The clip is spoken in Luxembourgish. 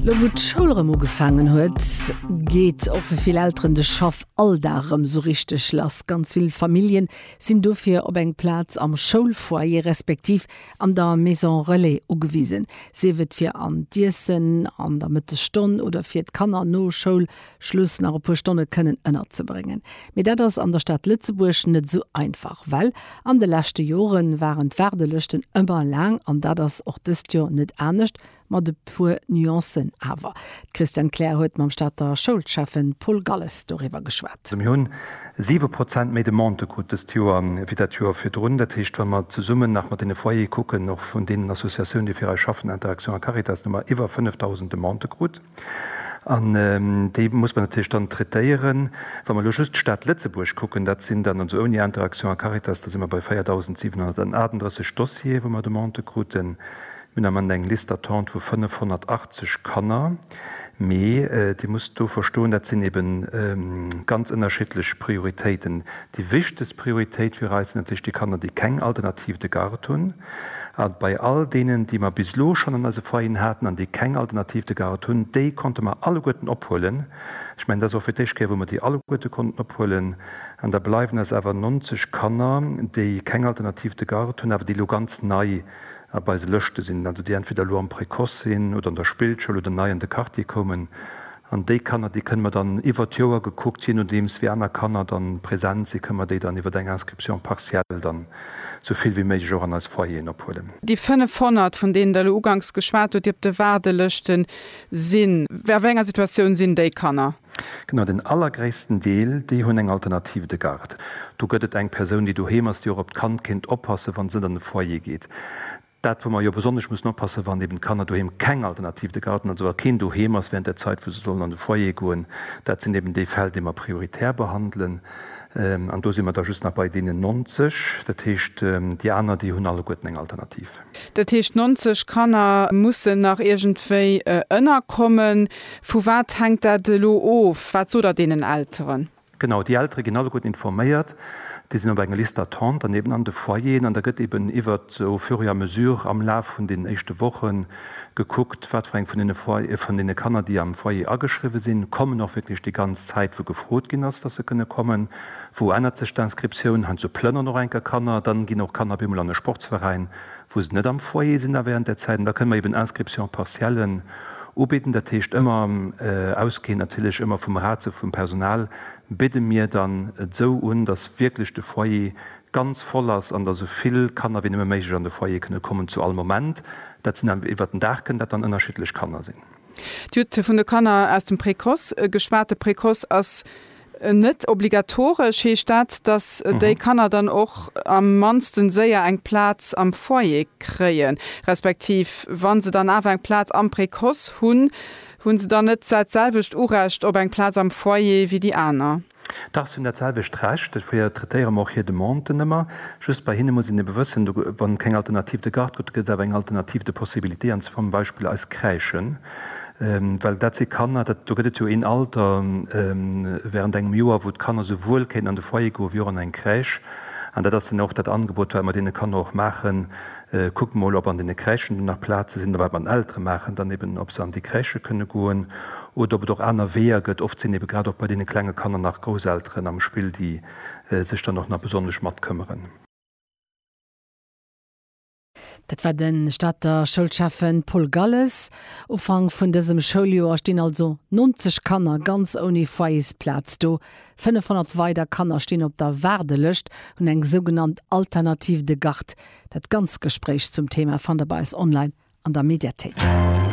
Lo wou d'Schoul rëm ugefaangen huet, geet och fir vill Elteren de Schaffalldag rëm sou richteg lass. Ganz vill Famillje sinn dofir op eng Plaz am Schoulfoyer respektiv an der Maison Relais ugewisen, sief et fir an d'Iessen an der Mëttesstonn oder fir d'Kanner no Schoul Schluss nach e puer Stonne kënnen ënnerzebréngen. Mee dat ass an der Stad Lëtzebuerg net esou einfach, well an de leschte Jore waren d'Waardelëschten ëmmer laang an dat ass och dëst Joer net anescht, mat e puer Nuancen awer. D'Christiane Kleer huet mam Stater Schoulschäffen Paul Galles doriwwer geschwat. Mir hunn siwe Prozent méi Demandë krut dëst Joer wéi dat Joer virdrun. Dat heescht, wa mer zesummen nach mat deene Foyere kucken, och vun deenen Associatioun, déi fir eis schaffen, Interaction a Caritas, hu mer iwwer 5.000 Demandë krut. An déi muss mer natierlech dann traitéieren. Wa mer elo just d'Stad Lëtzebuerg kucken, dat sinn dann, also ouni Interaction a Caritas, da si mer bei 4.738 Dossiere wou mer Demandë kruten. Mir hunn am Ament eng Liste d'attente vu 580 Kanner. Mee Dir musst do verstoen, dat sinn eebe ganz ënnerschiddlech Prioritéiten, Déi wichtegst Prioritéit fir eis sinn natierlech déi Kanner, déi keng Alternative de garde hunn. A bei all deenen, déi mer bis elo schonn an eise Foyeren haten an déi keng Alternative de garde hunn, déi konnte mer alleguerten ophuelen. Ech mengen, dat ass och fir d'éischt Kéier, wou mer déi alleguerte konnten ophuelen. An da bleiwen eis awer 90 Kanner, déi keng Alternative de garde hunn, awer déi elo ganz nei op eise Lëschte sinn, also déi entweder elo am Précoce sinn oder an der Spillschoul oder nei an de Quartier koumen. An déi Kanner, déi kënne mer dann iwwert d'Joer gekuckt, je nodeems wéi aner Kanner dann present sinn, kënne mer déi dann iwwert eng Inscription partielle dann esou vill wéi méiglech och an eis Foyeren ophuelen. Déi 500, vun deenen Der elo uganks geschwat hutt, déi op de Waardelëschte sinn, a wéi enger Situatioun sinn déi Kanner? Genau, den allergréissten Deel, déi hunn eng Alternative de garde. Do gëtt et eng Persoun, déi doheem ass, déi och op d'Kand kéint oppassen, wann se net an de Foyer geet. Dat wou mer jo besonnesch mussen oppassen, wann eben d'Kanner doheem keng Alternativ, de Garten also, a keen Doheem ass während der Zait wou se sollen an de Foyer goen, dat sinn eben déi Fäll déi mer prioritär behandelen. An do si mer da just nach bei deenen 90, dat heescht déi aner déi hunn alleguerten eng Alternativ. Dat heescht d'nonzeg Kanner mussen nach iergendwéi ënnerkommen. Vu wat hänkt dat elo of? Wat sot Der deenen Elteren? Genau, déi Eltere ginn alleguerten informéiert, déi sinn op enger Liste d'attente, dann eben an de Foyeren an da gëtt eben iwwert au fur et à mesure am Laf vun den éischte Woche gekuckt, wat fir eng vun deene Foy-, vun deene Kanner, déi am Foyer ageschriwwe sinn, kommen och wierklech déi ganz Zäit, wou gefrot ginn ass, dass se kënne kommen. Wou ännert sech d'Inscriptioun? Heiansdo plënneren och eng Kéier Kanner, dann ginn och Kanner op eemol an e Sportsveräin. wou se net am Foyer sinn da während där Zäit, an da kënne mer eben Inscriptions partiellen ubieden. Dat heescht ëmmer ausgehend natierlech ëmmer vum Ratio vum Personal bidde mir dann et sou un, datt wierklech de Foyer ganz voll ass an datt sou vill Kanner wéi nëmme méiglech an de Foyer kënne kommen zu all Moment. Dat sinn dann iwwert den Dag kënnen dat dann ënnerschiddlech Kanner sinn. Dir hutt vun de Kanner aus dem Précoce geschwat. De Précoce ass Net obligatoresch heescht dat, datt déi Kanner dann och am mannsten séier eng Plaz am Foyer kréien, respektiv wa se dann awer eng Plaz am Précoce hunn, hu se dann net dat selwecht Urecht op eng Plaz am Foyer wéi déi aner? Dach, se hunn dat selwecht Recht. Dofir traitéiere mer och hir Demanden ëmmer. Just bei hinne muss een ebe wëssen, wa keng Alternative de Garde gëtt, gëtt et awer eng Alternative de Possibilité, an zwar zum Beispill eis Crèchen. Well dat si Kanner, dat, do gëtt et jo een Alter während engem Joer, wou d'Kanner souwuel kéinten an de Foyer goen, wéi och an eng Crèche. An dat ass dann och dat Angebot, wat mer deene Kanner och maachen, Kuckt emol, ob an deene Crèchen do nach Plaze sinn, oder wat mer den Eltere maachen dann eben, ob se an déi Crèche kënne goen oder ob et och aner Weeër gëtt. Oft sinn ebe grad och bei deene klenge Kanner nach Grousselteren am Spill, déi sech dann och nach besonnesch matkëmmeren. Dat war de Stater Schoulschäffe Paul Galles. Ufank vun dësem Schouljoer stinn also 90 Kanner ganz ouni Foyersplaz do. 500 weider Kanner stinn op der Waardelëscht, hunn eng sougenannt Alternative de Garde. Dat ganz Gespréich zum Thema fannt der bei eis online an der Mediathéik.